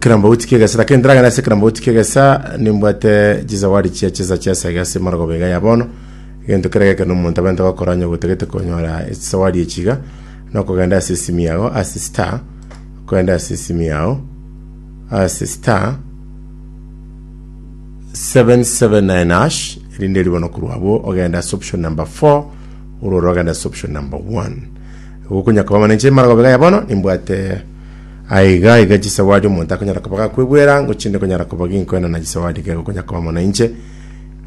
Kirambauti ki'egesera kenteragana ase kirambauti ki'egesa nimbwate chisawadi chia chesa chia saga ase emorogoba iga ya bono. Egento kere gekero nomonto abente gokora onye ogotagete konyora echisawadi echi iga, nokogenda ase esimi yago ase star, okogenda ase esimi yao ase star 779 hash, erinde ribe bono korwa abwo ogenda ase option number 4 orore ogenda ase option number 1. Gokonya koba mana inche emorogoba iga ya bono nimbwate Aye iga aiga chisawadi omonto akonyara koba gakwegwa erango chinde konyara koba ginkoena na chisawadi kego konya koba mono inche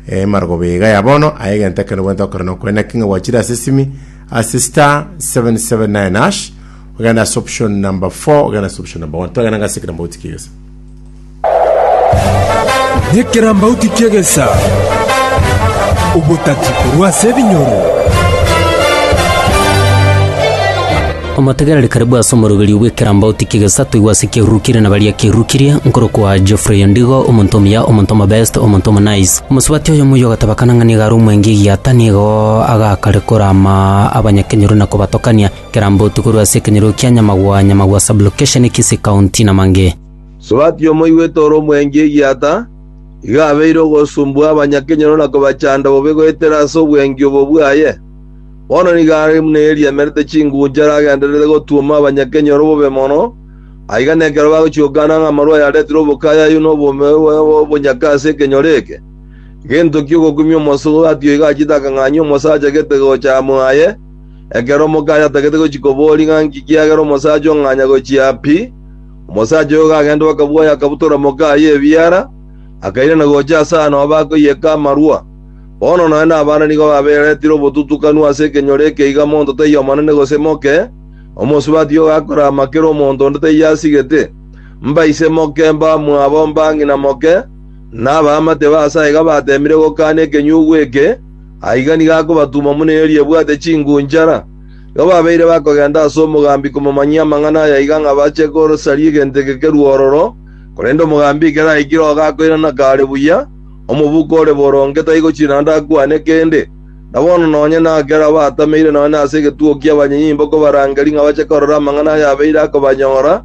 eh, marogoba iga ya bono aye egento ekero bwente okore nokoena king'a gwachire ase simi ase star 779 hash ogenda ase option number 4 ogenda ase option number 1 twagenda ngase kirambo gotikia egesa Nekerambauti ki'egesa, obotati korwa ase ebinyoro. Omotegereri karibu ase omoroberio bw'ekerambauti ki'egesa toigwe ase kiarurukirie na baria kiarurukirie, nkorokwa Geoffrey Ondigo, omonto omuya, omonto omobest, omonto omonaice. Omosubati oyomo oyio ogateba kana ng'a nigo are omwenge egiata, nigo agakare korama abanyakenyoro na kobatokania. Ekerambauti korwa ase ekenyoro kia Nyamagwa, Nyamagwa Sub-location, Kisii County, na mang'e. Sobati omoigwete ore omwengi egiata, igo abeire ogosumbua abanyakenyoro na kobachanda bobe goetera ase obwengi obo bwaye. Bono nigo are buna eria emerete chingunchara agendererete gotuoma abanyakenyoro bobe mono, aiga nekero bagochia gokana ng'a amarwa ayaretire obokayayu na obonyaka ase ekenyoro eke. Gento ki ogokumia omosobati oigo achiete akang'anyia omosacha gete gocha amo aye, ekero omokayo atagete gochia koboria ng'a nki kiagera omosacha ong'anya gochia pi? Omosacha oyo gagenda bakabwaya akabutora moka aye ebiara, akairana gocha ase aano abakoiyeka amarwa. Bono nonya nabande nigo baberetire obotutukanu ase ekenyoro eke iga monto taiyo omonene gose moke, omosubati oyo gakora amakere omonto onde taiyo asigete, mbaise moke, mbamwabo, mbang'ina moke, na abaamate ba ase aiga bateemire gokaana ekenyugu eke, aiga nigo akobatuma buna erio riebwate chingunchara. Igo babeire bakogenda ase omogambi komomanyia amang'ana aya aiga ng'a bache kosaria egento eke kerue ororo, korende omogambi ekero aikire oo gakoirana kaare buya, omobuko ore boronge taigo chinaanda akwane kende. Na bono nonye nakera batameire nonye nase egetugo ki'abanyenyimba okobarangeria ng'a bache korora amang'ana aya abeire akobanyora,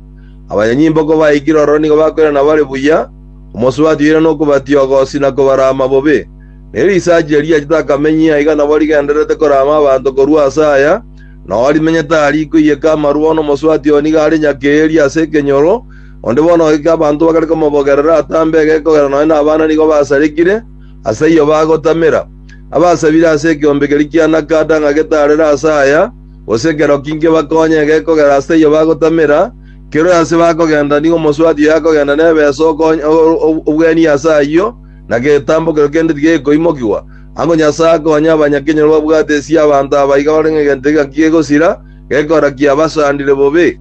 abanyenyimba okobaikire ororo nigo bakoirana bare buya, omosubati oirana okobatiogosia na kobarama bobe. Ne risacha erio riachete akamenyia aiga nabo rigendererete korama abanto korwa ase aya, nao rimenyete aa rikoiyeka amarua n'omoswati oo nigo are nyakeeri ase ekenyoro, onde bono ogeke abanto bakare komobogerera atambe egekogera nonye nabana nigo basarekire, ase ayio bagotamera. Abasabire ase ekeombe keria kia Nakada ng'a getarere ase aya, gose ekero ki nkebakonye egekogera ase ayio bagotamera, kerore ase bakogenda nigo omoswati oyo akogenda nebeso okonye obwenia ase ayio, na getambokero kende tigekoimokigwa, ang'o Nyasae akonye abanyakenyoro babwate esia abanto aba iga bare ng'egento egaki gegosira, gekora kiabasandire bobe?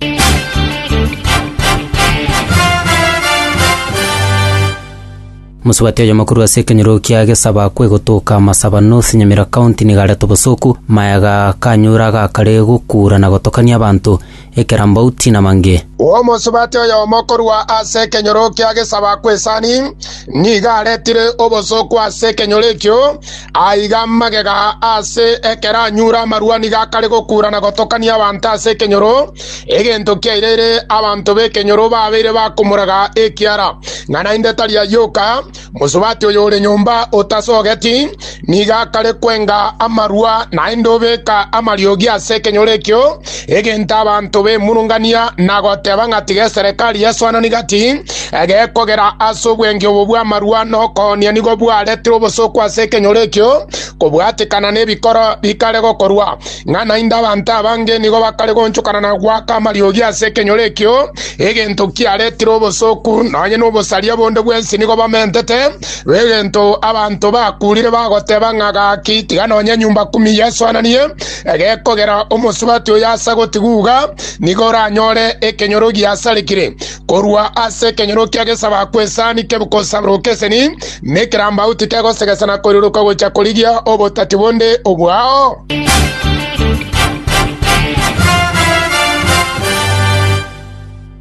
Mosubati oyomokuru ase ekenyoro kia Gesaba kwegotoka Masaba North Nyamira County niga arete obosoku, maega kanyure agakare gokura na gotokania abanto. ekerambauti namange. Omosubati oyomo korwa ase ekenyoro kia gesaba kw'esani nigo aretire obosooku ase ekenyoro ekio, aiga magega ase ekeranyuura amarua nigo akare gokuura na gotokania abanto ase ekenyoro, egento kiaireire abanto b'ekenyoro babeire bakomoraga ekiara, ng'a naende tari ayioka. Mosubati oyore nyomba otasogeti nigo akare kwenga amarua, naende obeka amariogi ase ekenyoro ekio, egento abanto bemurungania na goteba ng'a tigeserekari yaswanani gati egekogera ase obwengi obo bw'amarua na okoonia nigo bwaretire obosooku ase ekenyoro ekio kobwatekana nebikoro bikare gokorwa. Ng'a naende abanto abange nigo bakare goonchokana na goaka amariogi ase ekenyoro ekio, egento kiaretire obosooku, nonya nobosaria bonde bwensi nigo bamentete, egento abanto bakuurire bagoteba ng'a gaki tiga nonya enyomba kumi yesoananie, egekogera omosubati oyo ase gotiguga nigo oranyore ekenyoro giasarekire. Korwa ase ekenyoro kia gesabaku esani kegosaburoka eseni, na ekerambagu tikegosegesa na koiroroka gocha korigia obotati bonde obwao.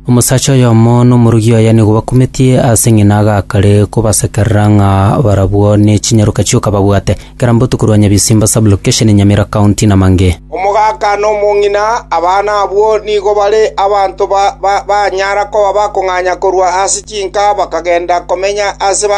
Omosacha oyomo n'omorugi oye nigo bakumetie ase ng'ina agakare kobasekerera ng'a barabwo ne chinyaroka chioka babwate. Kera mbotuko rwa Nyabisimba Sub-location Nyamira County namange. Omogaka na omong'ina, abana abwo nigo bare abanto banyara koba bakong'anya korwa ase chinka bakagenda komenya ase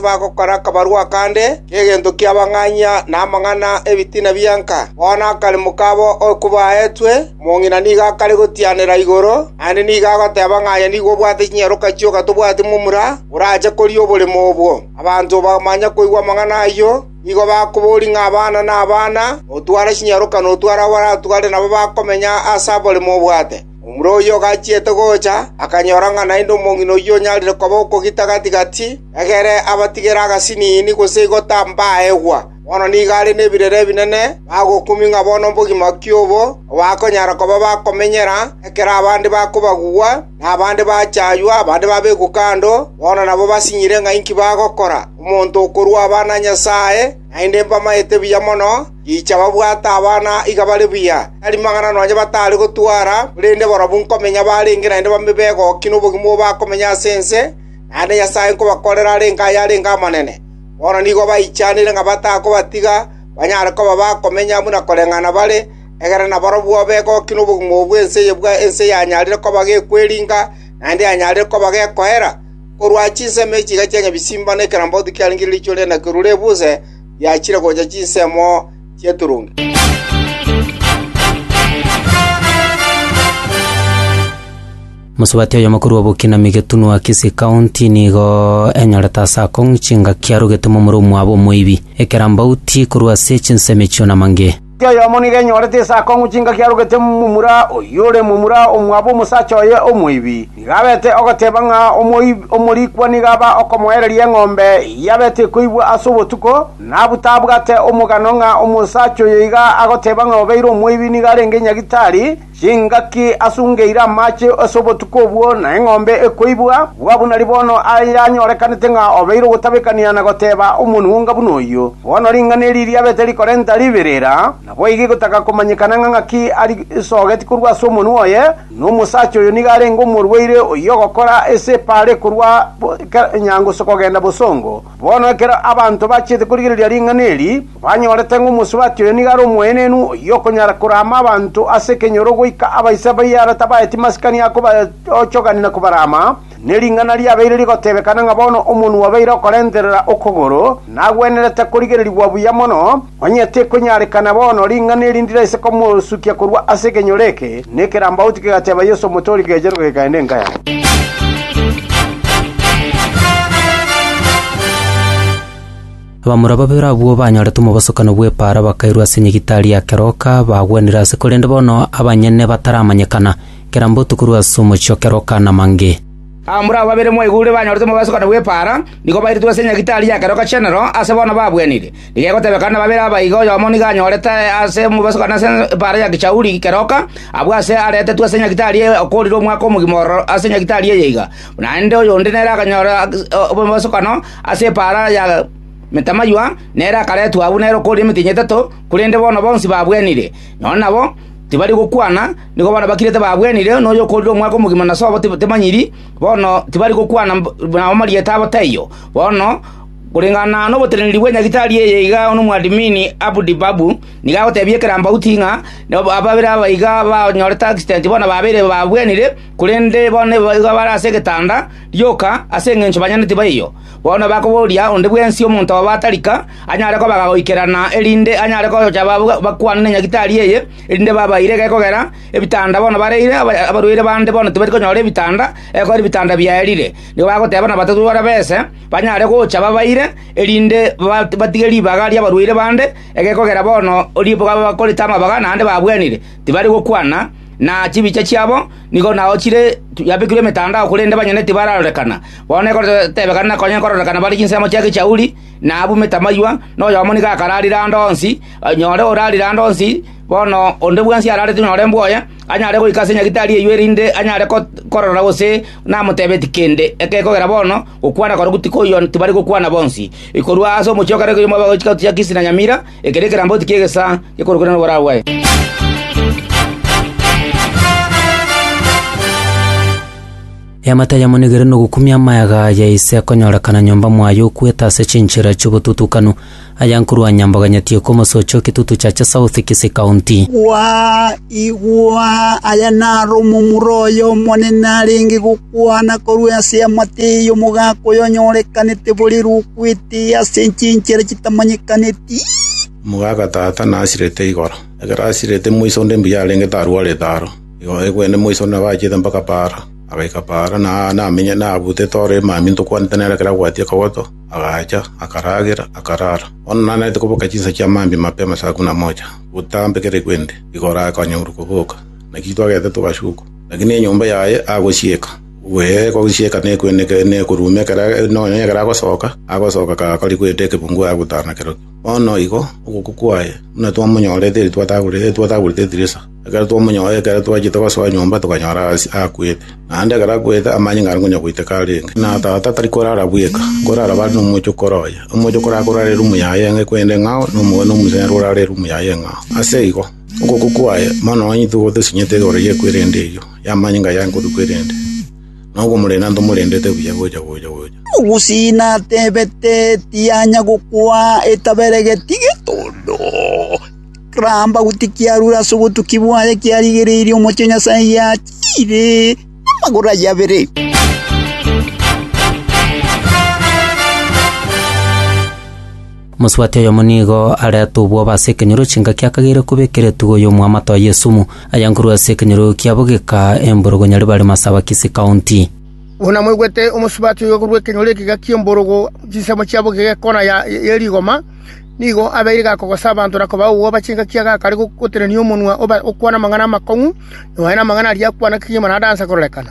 bagokora akabarua akande k'egento ki'abang'anyia na amang'ana ’ebitina bia nka. Bono akaremo kabo oko baetwe, omong'ina nigo akare gotianera igoro, naende nigo agoteba ng'a aye nigo obwate chinyaroka chioka tobwati momura orache koria oboremo obwo. Abanto bamanya koigwa amang'ana ayio, nigo bakoboria ng'a abana nabana, otware chinyaroka na otware abaratware nabo bakomenya aase abore mobwate. Omura oyio ogachiete gocha, akanyora ng'a naende omong'ina oyio onyarire koba okogita gati‐gati, egere abatigere agasiniini gose igota mbaegwa. Bono nigo are nebirero ebinene, bagokumia ng'a bono mbogima ki obo, obakonyara koba bakomenyera ekero abande bakobagugwa, na abande bachaywa, abande babekwa kando, bono nabo basinyire ng'a inki bagokora. Omonto okorua abana a Nyasae naende mbamaete buya mono, richa babwate abana iga bare buya, tari magana nonya batare gotwara, korende barabwo nkomenya barenge naende babe begoki nobogima obo bakomenya ase ense, naende Nyasae nkobakorera arenge aye arenge amanene. Bono nigo baichanire ng'a batakobatiga, banyare koba bakomenya buna koreng'ana bare, Egere nabarabwo begoki nobogima obo bw'ense eye bwa ense yanyarire koba gekweringa, naende yanyarire koba gekoera, korwa chinsemo echi chiga chia nyabisimba na ekerambauti kiarenge riicho riane korwa rebuse riachire gocha chinsemo chi'eturungi. Mosubati oyomo korwa Bokinami Getunwa Kisii County nigo enyorete ase akong'u chingaki arogete momura omwabo omoibi, ekerambauti korwa ase chinsemo echio namange. Oyomo nigo enyorete ase akong'u chingaki arogete momura, oyore momura omwabo omosacha oye omoibi, nigo abete ogoteba ng'a omorikwa nigo aba okomoereria eng'ombe eyio abete koibwa ase obotuko, nabutabwate omogano ng'a omosacha oyo iga agoteba ng'a obeire omoibi nigo arenge nyagitari, Chingaki asungeire amache ase obotuko obwo, na eng'ombe ekoibwa, bua buna ribono ayanyorekanete ng'a obeire ogotabekania na goteba omonwonga buna oyio. Bono ring'ana eri riabete rikorenta riberera, naboigo egotaka komanyekana ng'a ng'aki arisogeti korwa ase omonwa oye, na omosacha oyo nigo arenge omorwaire oyio ogokora ese paare korwa nyango kogenda bosongo. Bono ekero abanto bachiete korigereria ring'ana eri, Banyorete ng'a omosubati oyo nigo are omoenenu, oyio okonyara korama abanto ase ekenyoro goika abaisa baye are tabaeti masikani a kobaochogania na kobarama, ne ring'ana riabeire rigotebekana ng'a bono omonwa obeire okorenterera okogoro, nagwenerete korigererigwa buya mono, onye tekonyarekana bono ring'ana eri ndiraise komosukia korwa ase ekenyoro eke, na ekerambauti kegateba Yeso omotori kegecheruka kekaenda enka yabo. Abamura babere abwo banyorete omobosokano bw'epaara bakairwa ase nyagitari ya keroka, bagwenire ase korende bono abanyene bataramanyekana, kera mbotuko korwa ase omochie o keroka namange. Abamura aba babere mwaigure banyorete omobosokano bw'epaara, nigo bairetwe ase nyagitari ya keroka chi'enero, ase bono babwenire. Nigegotebekana nababere aba iga oyomo nigo anyorete ase omobosokano ase epaara ya gechauri keroka, abwo aase aretetwe ase nyagitari eye okoorire omwaka omogima ororo ase nyagitari eye iga, naende oyonde nere akanyora omobosokano Ase epaara ya Metamayua nere akaretwa agwo nere okooria emetienyi etato, korende bono bonsi babwenire. Nonya nabo tibari gokwana, nigo bono bakirete babwenire, na oyokoorire omwaka omogima na sobo temanyiri, bono tibari gokwana na amarieta abo taiyo. Bono koreng'ana noboteneneri bwe Nyagetari eye iga omwadmini Abdibabu nigo agotebia ekerambauti ng'a ababere aba iga banyorete accident bono babeire babwenire, korende bono nigo bare ase egetanda, Rioka, ase engencho banyene tibaiyo, bono bakoboria onde bwensi omonto obo atarika anyare kobaga goikerana, erinde anyare gocha bakwane ne nyagitari eye, erinde babaire gekogera ebitanda bono bareire, abarwaire bande bono tibari konyora ebitanda, ekogera ebitanda biaerire. Nigo bagoteba nabato bara bese banyare gocha babaire, erinde batige ribaga ri'abarwaire bande, egekogera bono ribaga bakorete amabaga naende babwenire, tibari gokwana na chibicha chiabo, Nigo nao chire yabekirwe emetandao, korende banyene tibararorekana. Bono ekoteebekana na konya kororekana bare chinsemo chia gechauri, na abumete amaywa, na oyomo nigo akararire ande onsi, nyore orarire ande onsi, bono onde bwensi ararete nyore mbwoye, anyare goika ase nyagitari eyio erinde anyare korora gose namoteebeti kende. Ekegera bono gokwana korokwo tikoiyo tibari gokwana bonsi. Korwa ase omochie o kare koiyo mwabao chikato chia Kisi na Nyamira, Eke nekeramboti ki'egesaa gekorokire noborabwae. Eamate ayamonigere nogokumia amayaga ya ise akonyorekana nyomba mwaye okwete ase chinchera chi'obotutukanu, ayankorwa nyamboga nyatieko omosocha o Kitutu Chache South, Kisii County. Igwa, igwa! Aya naro omomura oyo Omonene arenge gokuua. Kwana korwa ase eamate eyo omogaka oyonyorekanete borere okwete ase chinchera chitamanyekaneti. Omogaka tata nasirete igoro. Ekero asirete moiso onde mbuya arenge tarwarete aro. Igoro egwene moiso nabachiete mpaka paara. Agaika paara na aane amenye nabutete ore emambia ntokwanete nere ekero agwatie akagoto, agacha, akaragera, akarara. Bono nanarete koboka chinsa chia mambia mapema saa kumi na moja, gotambekereigwe inde. Igoro akanyorwa koboka, nakio twagete togasuka. Lakini enyomba yaye agosieka, ee, gosieka na ekweneka na ekoruuma ekero nonya ekero agosoka, agosoka kagakori goeta ekebungu agotara nakero. Bono igo ogokwa kwaye buna twamonyorete eri twatagorete eri twatagorete edirisa, ekero twamonyora ekero twachete gosoa nyomba tokanyora ase akwete. Naende ekero akwete amanyinga are konya goiteka arenge. Na tata tari korara bweka, nkorara bare nomocho kore oye. Omocho kore akorara erumu yaye enke kwende eng'ao, na omogwene omochenu ore are erumu yaye eng'ao. Ase igo. Okoko kwaye mono onyitu gotesinyete igoro y'ekwerenda eyio y'amanyinga ya nkotu kwerende, na okomorenda ntomorendete buya gocha gocha gocha. Ogusie natebete, Tianya gokwa etabere geti getondo. Ramba goti kiarure ase obotuki bwaye kiarigereirie omochie o Nyasae giachiire amagoro aye abere. Mosubati oyomo nigo arete obwoba ase ekenyoro chingaki akageire koba ekeretugo y'omoamate oye esumu, aya nkorwa ase ekenyoro kia bogika emborogo Nyaribari Masaba Kisii County. Buna mwaigwete omosubati oyo korwa ekenyoro ekega ki'emborogo chinsemo chia bogika ekona ya ye rigoma, nigo abeire gakogosa abanto na kobaa obwoba chingaki agakare gotenenia omonwa oba okwana amang'ana amakong'u, nonya nonye na amang'ana aria akwana kegima na adansa kororekana.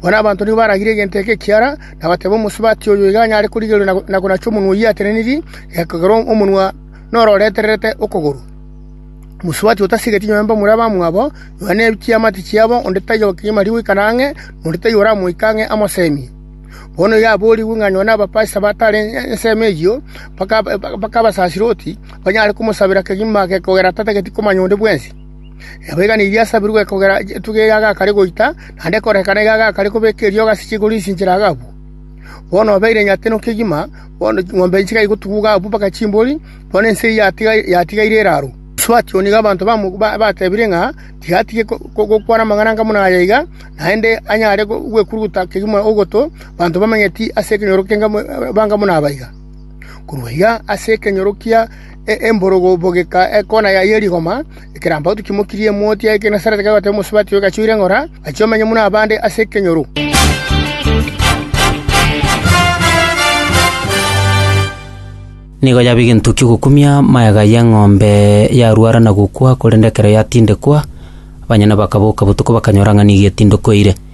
Bono abanto nigo baragire egento eke ekiara, na bateba, Omosubati oyo iga anyare korigereria na konacha omonwa oyio atenenirie, ekero omonwa nororetererete okogoro. Omosubati otasigeti nyowe mbe omura abamwabo, nyowe ne chiamate chiabo, onde taiyo okegima riire goikana ang'e, na onde taiyo oramoika ang'e amoseemie. Bono iga aborigwe ng'a nyowe nabapaise abatare ensemo eyio, mpaka abasasirooti banyare komosabera kegima age kogera tatageti komanya onde bwensi. Nabo egena eria yasabirwe kogera etugi eria agakare goita, naende ekorekana iga agakare kobeka eriogi ase chigoro esinchera agabua. Bono obeire nyateno kegima, bono ching'ombe inchika igotuguga abwo mpaka chimbori, bono ense eyio yatigaire eraaro. Asuatia oo nigo abanto batebire ng'a tigatige gokwana amang'ana anga buna aya iga, naende anyare gwekuruguta kegima ogoto, abanto bamanyeti ase ekenyoro k'enka banga buna aba iga. Korwa iga ase ekenyoro kia emborogo bogeka ekona yaye ye rigoma, ekerambagoto kimokirie emoti ya Genesareti kegoeta omosubati oyo gachiire ng'ora, gachia omenye buna abande ase ekenyoro. Nigo yaba egento ki'ogokumia magega y'eng'ombe yarwara na gokwa, korende ekero yatindekwa, abanyene bakaboka botuko bakanyora ng'a nigo etindekeire.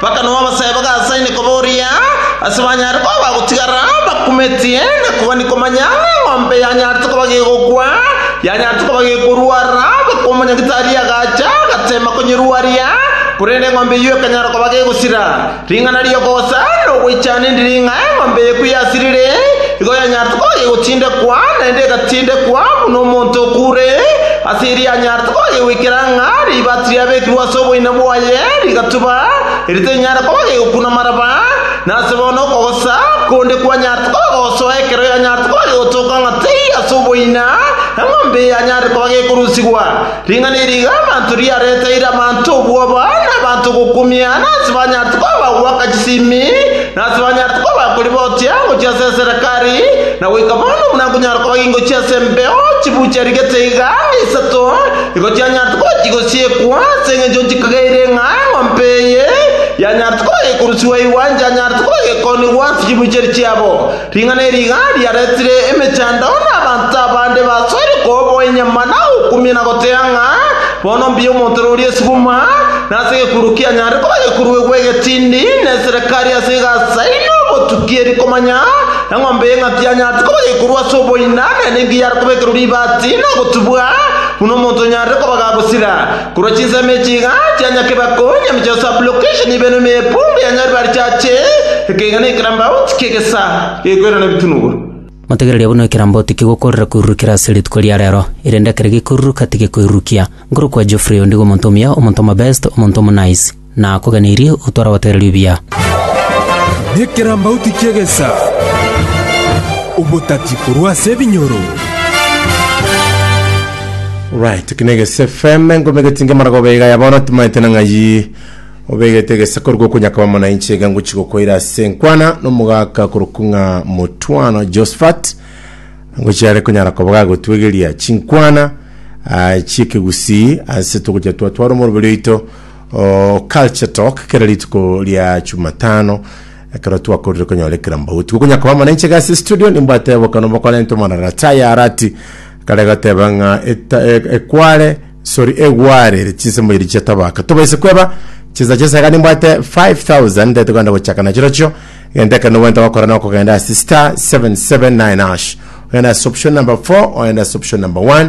Mpaka nao abasae bagasaine koboria ase banyare koba bagotigara bakumetie na kogania komanya ng'a eng'ombe yanyarete koba gegokwa, yanyarete koba gekorwara, bakwa omonyagitari agacha agateema konyerwaria, korende eng'ombe eyio ekanyara koba gegosira. Ring'ana ri'okogosa nogoichana endiri ng'a eng'ombe eye ekwe yasirire, igo yanyarete koba gegotindekwa, naende egatindekwa buna omonto okure ase eria anyarete. Tokobagia goikera ng'a ribaati riabekirwe ase oboina bwaye rigatuba, erio terinyare koba rigokuna maraba, na ase bono okogosa konde kwanyarete koba gosoa ekero yanyarete koba gegotooka ng'a teiyo ase oboina, eng'ombe eye yanyarire koba gekorusigwa. Ring'ana eri iga abanto riareteire abanto obwoba, na abanto gokumia, na onsi banyarete koba bagoaka chisimi, Na tibanyare koba koribotia gochia ase eserekari, na goika bono buna nkonyara koba gingochia ase embeo chibucha rigete iga isato, nigo chianyarete koba chigosiekwa, ase engencho nchikageire ng'a eng'ombe eye yanyarete koba gekorusigwa igwa enchanyarete koba gekoonigwa ase chibucheri chiabo. Ring'ana eri iga riaretire emechandao na abanto abande basoire koboa enyama na gokumia na goteeba ng'a, Bono mbuya omonto ore oria esibuma, na ase egekururo kianyare koba egekururo egwe egetindi, na eserekari ase egasa eye na obotuki eri komanya, Eng'ombe y'eng'aki yanyaarete koba egekururo ase oboina, naende engiya yare koba ekerwo ribaati na ogotubwa, buna omonto onyarire koba gagosira. Korwa chinsemo echi iga chia Nyakebakoonya emeche ya sublocation ibe nonya epunga ya Nyaribari chiache, ekeiga na ekerambauti ki'egesa gekoirana ebitunuguru. Motegererie buna ekerambauti kigokoorera koirurukera ase rituko ria reero, erinde ekero gekoiruruka tigekoirurukia. Nkorokwa Geoffrey, ondigo omonto omuya, omonto omobest, omonto omonice. Nakogeneirie otware obateererie obuya. Nekerambauti ki'egesa, obotati korwa ase ebinyoro. Right, eki na Egesu FM, engoma egetinge marago obe iga ya bono timaete na ng'ai obegete egesa koruga okonyaka bamo na inche iga ngochi gokoira ase enkwana na omogaka korokwa ng'a motwano Josephat ngochi are konyara koba gagotwegeria chinkwana ah, chi'ekegusii ase togocha twatwara omoroberi oito Oh, Culture Talk kera rituko ria Jumatano ekero twakorire konyora ekera mbauti gokonya koba mana inche gasi studio nimbwate bokano bokora into mana rataya arati kare gateba ng'a eta- e- ekware sorry egware chinsemo iri chiatabaka tobaise kweba chisa chesa iga nimbwate 5000 ndete kwenda gochaka na chirochio genta ekero nobwente gokora na okogenda ase star 779 ash ogenda ase option number 4 ogenda ase option number 1